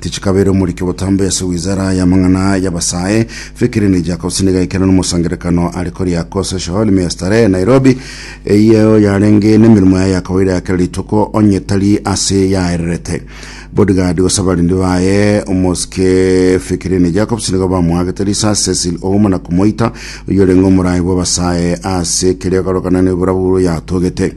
Tichikabeire omoriki obotambe ase wizara y'amang'ana y'abasae, Fikiri Nijjakausini gaikera nomosangererekano are koria Kose Showali me ya Starehe, Nairobi, eyio yarenge nemeremo yaye ya kawaida ya kera rituko, onye tari ase yaererete. Bodyguard gose abarendi baye omosike Fikiri Nijjakausini nigo bamoagete risasi Cecil Ouma na komoita, oyio orenge omorai bw'abasae ase keria ekorokana n'eborabu yatogete.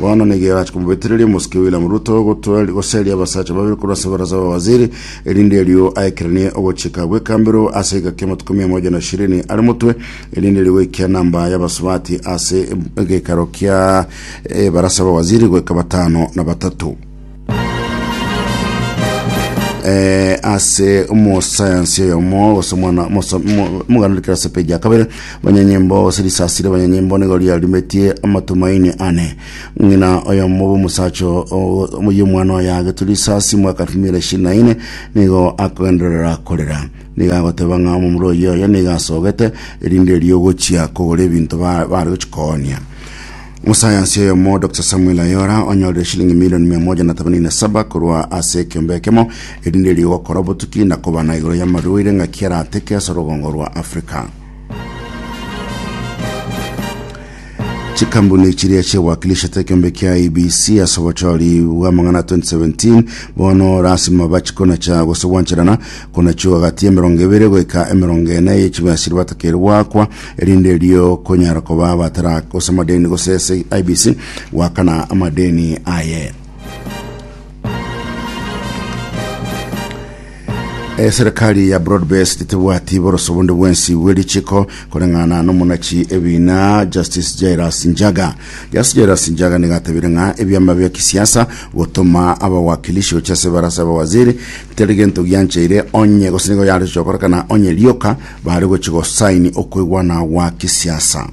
Bono nigo erache komobetereria omosike William Ruto gotwari- goseria abasacha babere korwa ase ebarasa y'abawaziri, erinde erio aekeranie ogochika gw'ekambero ase egeka y'amatuko mia moja na ishirini are motwe, erinde erio goikia namba y'abasubati ase egeikaro kia ebarasa y'abawaziri goika batano na batato. eh, ase omosayansi oyomo gose omwana omoso- omo- omoganori kerase peji ya kabere banyanyimbo gose risasire banyanyimbo nigo riarimetie amatumaini ane ng'ina oyomo bw'omosacha y'omwana oyo agetwe risasi mwaka elfu mbili na ishirini na ine nigo akogenderera korera nigo agoteba ng'a omomura oyo oyo nigo asogete erinde ri'ogochia kogora ebinto ba- bare gochia koonia Mosayansi oyomo, Dr. Samuel Ayora, onyorire shilingi milioni mia moja na themanini na saba korwa ase ekiombe ekemo, erinde erio gokora obotuki na kobana igoro y'amarwaire ng'aki arateke ase orogongo rwa Africa. Chikambuni chiria chiewakilishete ekiombe kia IBC ase obochori bw'amang'ana 2017 bono rasima bachikona cha gose gwancherana konachiwa gati y'emerongo ebere goika emerongo ene y'echibiasiri batakeire gwakwa erinde erio konyara koba abatara gose amadeni gose ase IBC gwakana amadeni aye. eserikali ya broadbased tebwati boroso bonde bwensi bw'erichiko koreng'ana n'omonachi ebina justice jairas njaga justice jairas njaga nigatebire ng'a ebiama bia kisiasa gotoma abawakilishi gochia ase barasa abawaziri teri gento giancheire onye gose nigo yare gochia gokorekana onye rioka Bare gochia gosaini okoigwana gwa kisiasa.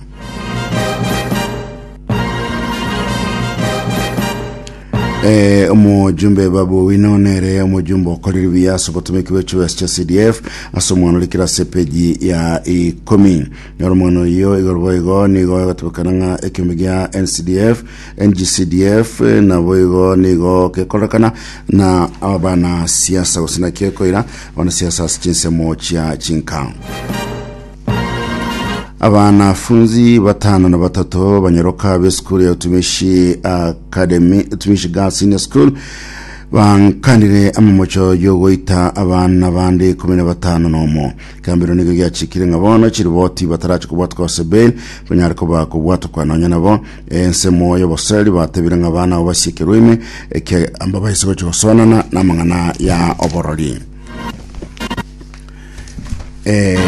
Eh, omojumbe babu owino nere omojumbe okorire buya ase obotomeki bwe chibesa chia cdf ase omwana ore kera ase epeji ya ikomi yora omwana oyo igoro boigo nigo egotebekana ng'a ekiombe gia ncdf ngcdf eh, na boigo nigo gekorekana na abana siasa gose naki ekoira Abanasiasa ase chinsemo chia chinka. Abanafunzi batano na batato banyaroka b'esukuru ya Utumishi Academy, Utumishi Girls Senior School bankanire amamocho y'ogoita abana bande ikumi na batano nomo kambiro nigo giachikire ng'a bono chiriboti batarachi kobwatwa gose bail banyare koba kobwatwa nonya nabo Ensemo y'oboseri batebire ng'a abana abo basiekerwe ime ekiagera baise gochia gosoanana n'amang'ana ya oborori. Eh,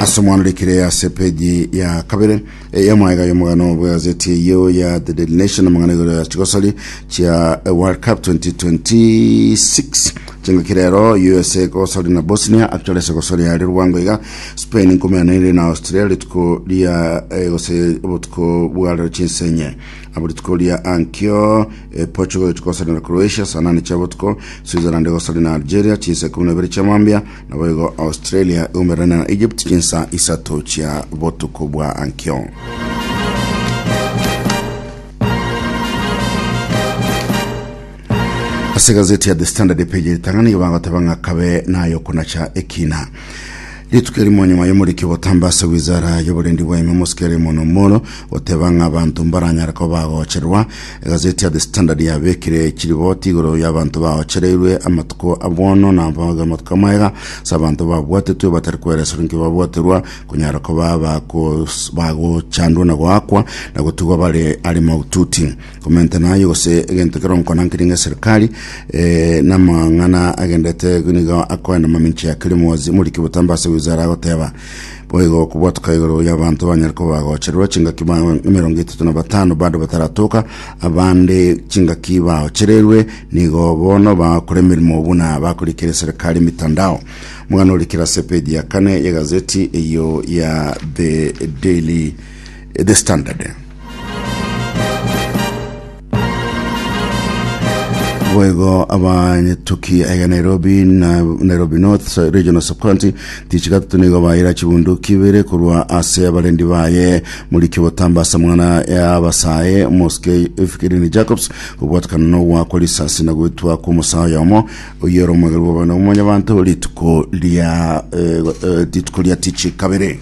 ase omwana orikire ase peji ya kabere eh, ya mwaega y'omogano bwegazeti eyio ya the daily nation amang'ana igoro ya chigosori chia eh, world cup 2026 chingaki rero usa egosori na bosnia actually ase egosori yari rwango iga Spain nkomeaneire na Austria rituko ria eh, gose obotuko bwarero chinsenye abo rituko ria ankio eh, Portugal itukosanera Croatia saa nane chia botuko Switzerland egosari na Algeria chinsa ikumi na ibere chia mambia nabo igo Australia igomererane na Egypt chinsa isato chia botuko bwa ankio ase gazeti ya the standard page ritang'ani igo bagoteba ng'a kabe nayo konacha ekina Rituko erimo nyuma y'omoriki ogotamba ase wizara y'oborendi bwaime mosikere mono mono goteba ng'a abanto mbaranyare ko bagocherwa. Egazeti ya The Standard yabekire chiriboti igoro y'abanto baochereirwe amatuko abwono na abaga amatuko amaega ase abanto babwatetwe batari kwereserwa nki babwaterwa konyara ko baba kos- bagochandwa na goakwa na gotigwa bare ari maututi. komenta naye gose egento kero nkona nkiri nge serikali eh, na mang'ana agendete nigo akoe na maminchi ya kiri mwozi muri kibutamba ase wizara agoteba boigo kubwatuka igoro ya bantu banyare ko bagocherwa chingaki ba emerongo etatu na batano bado bataratoka abande chingaki baochererwe nigo bono bakore emirimo buna bakorikire serikali mitandao mwana orikira ase page ya kane ya gazeti eyo ya the daily the standard boigo abanyetoki aya nairobi na nairobi north so- regional subcounty tichi gatatu nigo baira chibunduki ibere korwa ase abarendi baye moriki obotambasa mwana ya abasae moske efikirini jacobs kobwatakana nogwakwa risasi na gwetwa kw'omosae oyomo oyere omwegerwa obana omonyabanto rituko ria eh, eh, rituko ria tichi kabere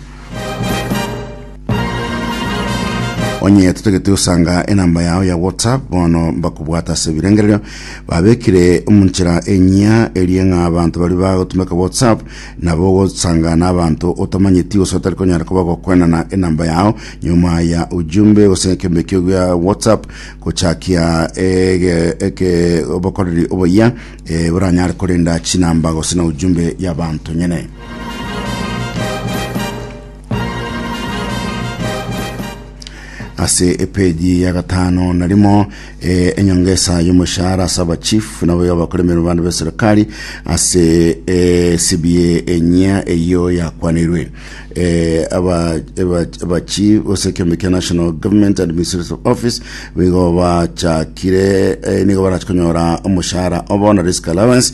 onye totagete gosanga enamba yao ya whatsapp bono mbakobwata ase ebirengererio babekire omunchera enyia erie ng'a abanto bari bagotumeka whatsapp nabo gosanga na abanto otamanyeti gose otari konyara koba gokwenana enamba yao nyuma ya ujumbe gose ekembekio gia whatsapp gochakia ege- eke obokoreri oboyia eh, boranyare korenda chinamba gose na ujumbe ya abanto nyene ase epeji ya gatano na rimo eh, enyongesa y'omoshahara ase abachief nabo abakora emeremo bande b'eserikari ase eh, cba enyia eyio yakwanirwe eh, aba- aba- abachief ase ekiombe kia national government administrative office bigo bachakire eh, nigo barachikonyora omoshahara obo na risk allowance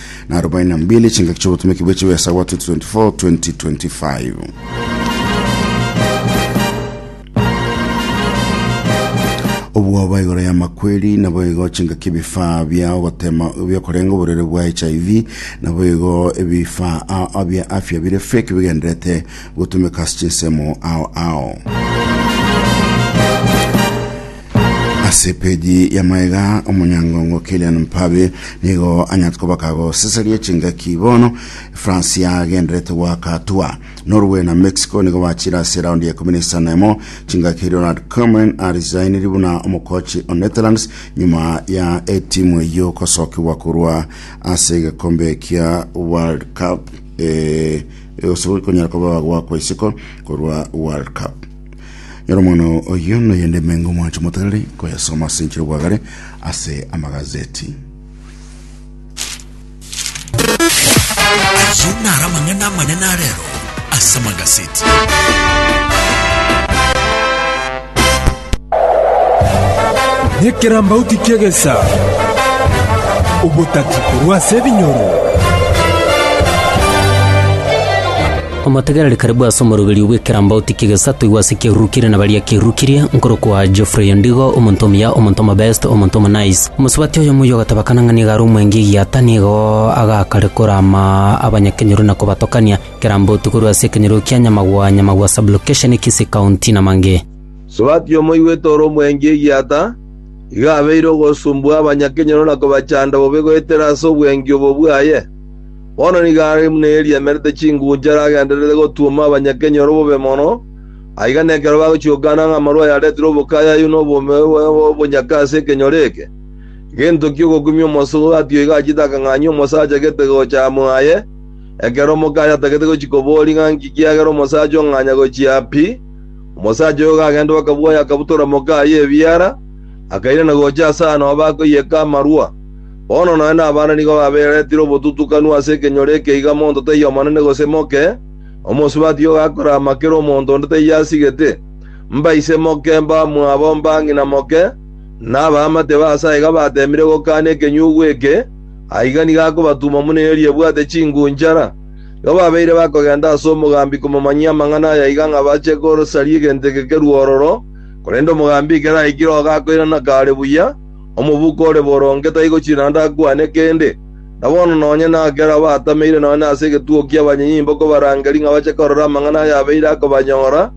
na arobaini na mbili chingaki ch'obotomeki bwe chibesa bwa 2024-2025. obwoba igoro ya makweri nabo igo chingaki ebifaa bia ogotema biokorenga oborere bwa hiv nabo igo ebifaa a- a- bia afya bire fake bigenderete gotumeka ase chinsemo ao ao Ase peji ya maega omonyangongo Kylian Mbappe nigo anyate kobaka goseseria chingaki bono France yagenderete goaka atua. Norway na Mexico nigo bachire ase raundi ya ikomi na isano emo chingaki Ronald Koeman arisainiri buna omokochi o Netherlands nyuma ya etimu eyio gosokigwa korwa ase egekombe kia World Cup eh, gose konyara koba gwakwa isiko korwa World Cup. Nyora omwana oyio noyende emengo omwancho moterere koyasoma ase enchera obwagare ase amagazeti. Ayio naro amang'ana amanene arero ase amagazeti. Nekerambauti ki'egesa, obotati korwa ase ebinyoro. Omotegereri karibu ase omoroberio bw'ekerambauti ki'egesato igwa ase kiarurukire na baria kiarurukirie, nkorokwa Geoffrey Ondigo, omonto omuya, omonto omobest, omonto omonaice. Omosubati oyomo oyio ogateba kana ng'a nigo are omwenge egiata, nigo agakare korama abanyakenyoro na kobatokania. Ekerambauti korwa ase ekenyoro kia Nyamagwa, Nyamagwa Sub-location, Kisii County, na mangĩ. Omosubati oyomo oigwete ore omwenge egiata, igo abeire ogosumbua abanyakenyoro na kobachanda bobe goetera ase obwengi obo bwaye. Bono nigo are buna eeri emerete chingunchara agendererete gotuoma abanyakenyoro bobe mono, aiga nekero bagochiokana ng'a amarua ayaretire obokayayu na obonyaka ase ekenyoro eke. Gento ki'ogokumia omosughu atiyo iga achiete akang'anyia omosacha gete gocha amo aye, ekero omokayo atagete gochia koboria ng'a nki kiagera omosacha ong'anya gochia pi. Omosacha oyo gagenda bakabwoya akabutora mokaye ebiara, akairana gocha ase aano bakoiyeka amarua. Bono nonye nabande nigo babeeretire obotutukanu ase ekenyoro eke iga monto taiyo omonene gose moke, omosubati ogakora amaka ere omonto onde taiyo asigete, mbaise moke, mbamwabo, mbang'ina moke, na abaamate ba Nyasae iga bateemire gokaana ekenyugwa eke, aiga nigo akobatuma buna eeri ebwate chingunchara. Igo babeire bakogenda ase omogambi komomanyia amang'ana aya iga ng'a bache kosaria egento eke kerua ororo, korende omogambi ekero aikire ogakoirana kare buya, Omobuko ore boronge taigo chinaanda akwane kende, na bono nonye nakera abatameire nonye ase egetugo ki'abanyenyimbo kobarangeri ng'a bache korora amang'ana ayabeire akobanyora,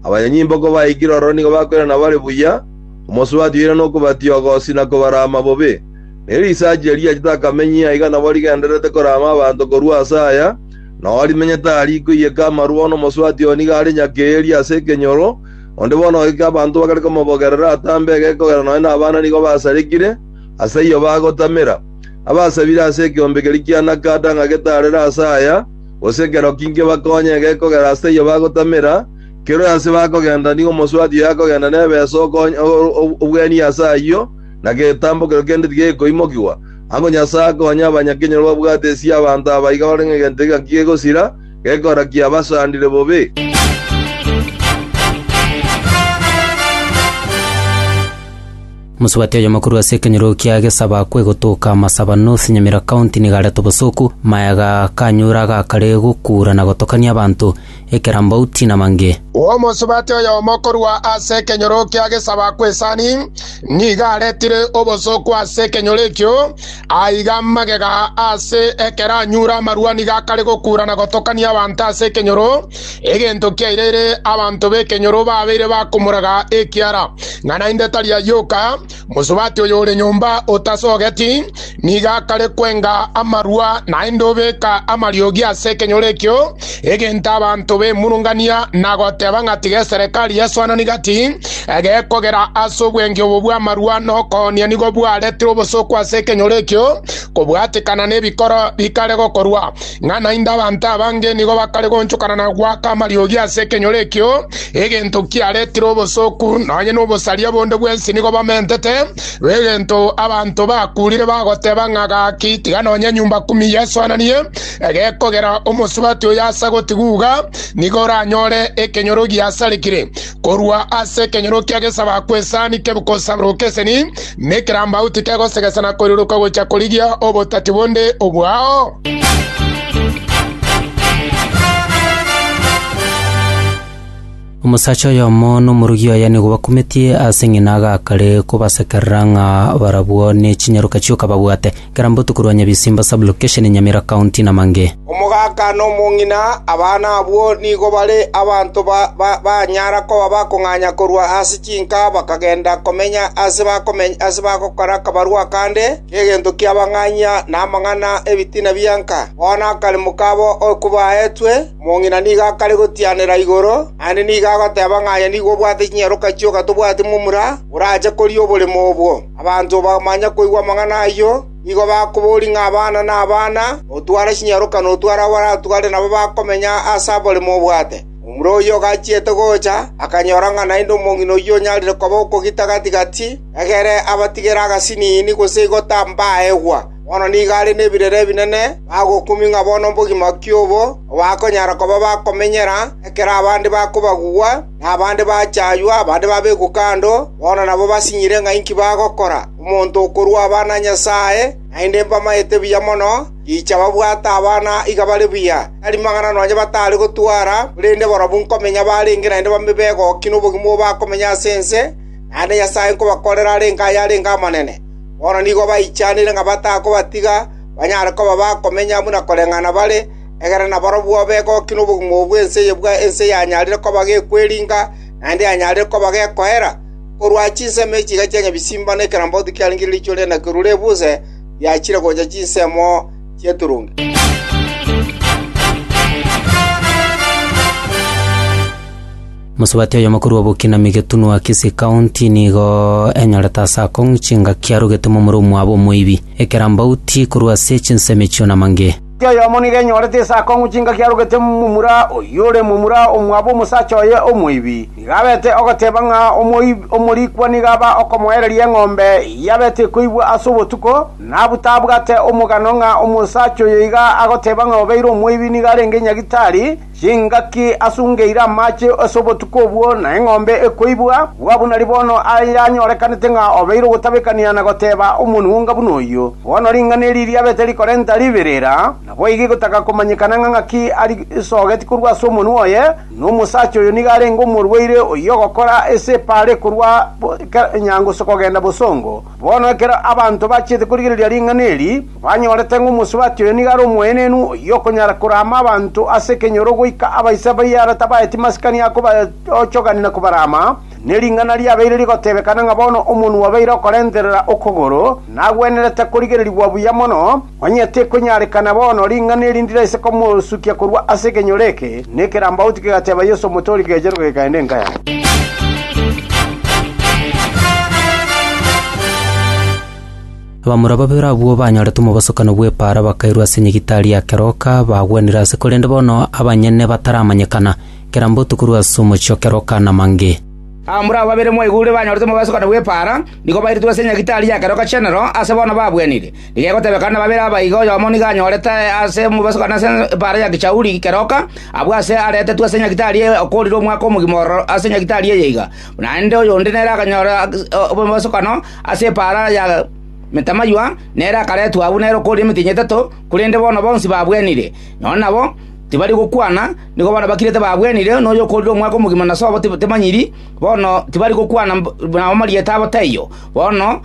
abanyenyimbo kobaikire ororo nigo bakoirana bare buya, omosubati oira nokobatioga osi na kobarama bobe. Ne risacha erio riachete akamenyia aiga nabo rigendererete korama abanto korwa ase aya, nao rimenyete aria rikoiyeka amarwa bono omosubati oyo nigo are nyakeeri ase ekenyoro, Onde bono oike abanto bakare komobogerera atambe egeka ogera nonye nabana nigo basarekire, ase ayio bagotamera. Abasabire ase ekeombe keria kia Nakata ng'a getarere ase aya, gose ekero ki nkebakonye egeka ogera ase ayio bagotamera, keroe ase bakogenda nigo omosubati oye akogenda nebesa okonya obweenie ase ayio, na getambo keria kende tigekoimokigwa. Ango Nyasae akonye abanyakenyoro babwate esia abanto aba iga barenge egento egaki gegosira, Gekora kiabasandire bobe. Mosubati oyomo korwa ase ekenyoro kia Gesaba kwegotoka Masaba North, Nyamira County, nigo areta obosoku, mayaga kanyura gakare gokuura na gotokania abanto, ekerambauti na mange. Omosubati oyomo korwa ase ekenyoro kia Gesaba kw'Esani nigo aretire obosoku ase ekenyoro ekio, Aiga amagega ase ekero anyure amarua nigo akare gokura na gotokania abanto ase ekenyoro, egento kiairire abanto b'ekenyoro babeire bakomoraga ekiara, ng'a naende tari ayoka. Mosubati oyo ore nyomba otasogeti nigo akare kwenga amarua, naende obeka amariogi ase ekenyoro ekio. egento abanto bemurungania na goteba ng'a tiga eserekari yeswanani gati egekogera ase obwenge obo bw'amarua na okoonia nigo bwaretire obosooku ase ekenyoro ekio kobwatikana n'ebikoro bikare gokorwa ng'a naende abanto abange nigo bakare gonchokana na gwaka amariogi ase ekenyoro ekio egento kiaretire obosooku nonye n'obosaria bonde bwensi nigo bamentete egento abanto bakurire bagoteba ng'a gaki tiga nonye nyumba kumi yeswananie Egekogera omosubati oyo ase agotigugha, nigo oranyore ekenyoro giasarekire korwa ase ekenyoro kia gesaba kw'esani kebkosaburoka eseni, na ekerambau tikegosegesa na koiroroka gocha korigia obotati bonde obwao. Omosacha oyomo nomorugi oye nigo bakumetie ase ng'ina agakare kobasekerera ng'a barabwo ne chinyaroka chioka babwate, kera mbotuko rwa Nyabisimba sub-location Nyamira county na Mange. Omogaka na omong'ina, abana abwo nigo bare abanto banyara koba bakong'anya korwa ase chinka bakagenda komenya ase bagokora akabarua akande k'egento ki'abang'anyia na amang'ana 'ebitina bianka. Bono akaremo kabo oko baetwe, Omong'ina nigo akare gotianera igoro, naende nigo agoteba ng'a aye nigo obwate chinyaroka chioka tobwati momura orache koria oboremo obwo. Abanto bamanya koigwa amang'ana ayio, nigo bakoboria ng'a abana nabana, otware chinyaroka na otware abo aratware nabo bakomenya ase oboremo obwate. Momura oyio ogachiete gocha, akanyora ng'a naende omong'ina oyio onyarire koba okogita gati gati, egere abatigere agasiniini gose igota mbaegwa. Bono nigo are nebirero ebinene bagokumia ng'a bono mbogima ki obo obakonyara koba bakomenyera, ekero abande bakobagugwa, na abande bachaywa, abande babekwa kando, bono nabo basinyire ng'a inki bagokora. Omonto okorua abana a Nyasae, naende mbamaete buya mono, richa babwate abana iga bare buya, tari mang'ana nonya batare gotwara, korende barabwo nkomenya barenge naende babe begoki nobogima obo bakomenya ase ense, naende Nyasae nkobakorera arenge aye arenge amanene. Bono nigo baichanire ng'a batakobatiga banyare koba bakomenya buna koreng'ana bare, ekerero nabarabwo begokia nobogima obo bw'ense eye bwa ense yanyarire koba gekweringa, naende yanyarire koba gekoera. Korwa chinsemo echi chiga chia nyabichimba nekerambaotu kiaringire riichwa ri'enaki rure buse, riachire gocha chinsemo chi'eturungi. Mosubati oyomo korwa Obokinami getunwa Kisii County nigo enyorete ase akong'u chingaki arogete momura omwabo omoibi, ekerambauti korwa ase chinsemo echio na mange. Mosubati oyomo nigo enyorete ase akong'u chingaki arogete momura oyore momura omwabo omosacha oye omoibi. Nigo abete ogoteba ng'a omorikwa nigo aba okomoereria eng'ombe eyio abete ekoibwa ase obotuko, nabu tabwate omogano ng'a omosacha oyo iga agoteba ng'a obeire omoibi nigo arenge nyagitari, Chingaki asungeire amache ase obotuko obwo, na eng'ombe ekoibwa, bwabunari bono ayanyorekanete ng'a obeire ogotabekania na goteba omonwonga buna oyio. Bono ring'ana eri riabete rikorenta riberera, naboigo egotaka komanyekana ng'a ng'aki arisogeti korwa ase omonwa oye, na omosacha oyo nigo arenge omorwaire oyio ogokora ase epaare korwa nyango kogenda bosongo. Bono ekero abanto bachiete korigereria ring'ana eri, Banyorete ng'a omosubati oyo nigo are omoenenu, oyio okonyara korama abanto ase ekenyoro goika abaisa baye ara tabaeti masikani a kobaochogania na kobarama, ne ring'ana riabeire rigotebekana ng'a bono omonwa obeire okorenterera okogoro, nagwenerete korigererigwa buya mono, onye tekonyarekana bono ring'ana eri ndiraise komosukia korwa ase ekenyoro eke, na ekerambauti kegateba Yeso omotori kegecheruka gekaenda enka yabo. Abamura babere abwo banyorete omobosokano bw'epaara bakairwa ase nyagitari ya keroka, bagwenire ase korende bono abanyene bataramanyekana, kera mbotu korwa ase omochie o keroka na mange. Abamura abo babere mwaigure banyorete omobosokano bw'epaara, nigo bairetwe ase nyagitari ya keroka chenero, ase bono babwenire. Tigegotebekana nababere aba iga oyomo nigo anyorete ase omobosokano ase epaara ya gechauri keroka, abwo aase aretetwe ase nyagitari eye okoorire omwaka omogima ororo ase nyagitari eye iga, naende oyonde nere akanyora omobosokano Ase epaara ya metamaywa nere akaretwa agwo nere okoria emetienyi etato, korende bono bonsi babwenire. Nonya nabo tibari gokwana, nigo bono bakirete babwenire, na oyokorire omwaka omogima na sobo temanyiri, bono tibari gokwana na amarieta abo taiyo. Bono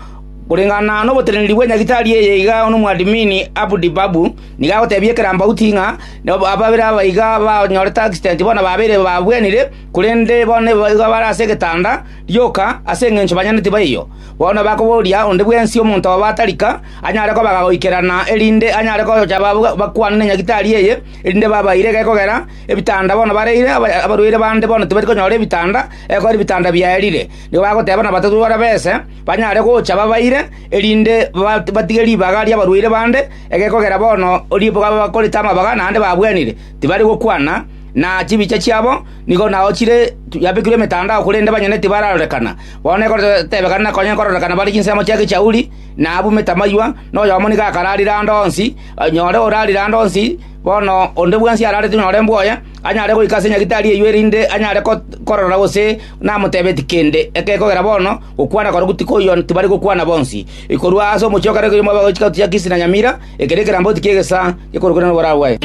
koreng'ana noboteneneri bwe nyagitari eye iga omwadmin Abdi Babu nigo agotebia ekerambauti ng'a ababere aba iga banyorete accident bono babere babwenire, korende bono nigo bare ase egetanda, Rioka, ase engencho banyene tibaiyo, bono bakoboria onde bwensi omonto obo atarika anyare kobaga goikerana, erinde anyare gocha bakwane ne nyagitari eye, erinde babaire gekogera ebitanda bono bareire, abarwaire bande bono tibari konyora ebitanda, ekogera ebitanda biaerire. Nigo bagoteba nabatatwora bese banyare gocha babaire, erinde batige ribaga ri'abarwaire bande, egekogera bono ribaga bakorete amabaga naende babwenire, tibari gokwana na chibicha chiabo, Nigo nagochire yabekirwe emetandao, korende banyene tibararorekana. Bono ekoteebekana na konya nkororekana bare chinsemo chia gechauri, na abumete amaywa, na oyomo nigo akararire ande onsi, nyore orarire ande onsi, bono onde bwensi ararete nyore mbwoye, anyare goika ase nyagitari eyio erinde anyare korora gose namoteebeti kende. Ekegera bono gokwana korokwo tikoiyo tibari gokwana bonsi. Korwa ase omochie o kare koiyo mwabegochia gatuti gia Kisi na Nyamira, Eke nekeramboti ki'egesaa gekorokire noboraa bwaye.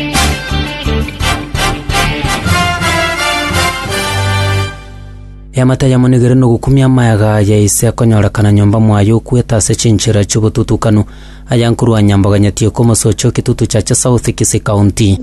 Eamate ayamonigere nogokumia amayaga ya ise akonyorekana nyomba mwaye okwete ase chinchera chi'obotutukanu, ayankorwa nyamboganyetie komosochio kitutu chacha South Kisii County.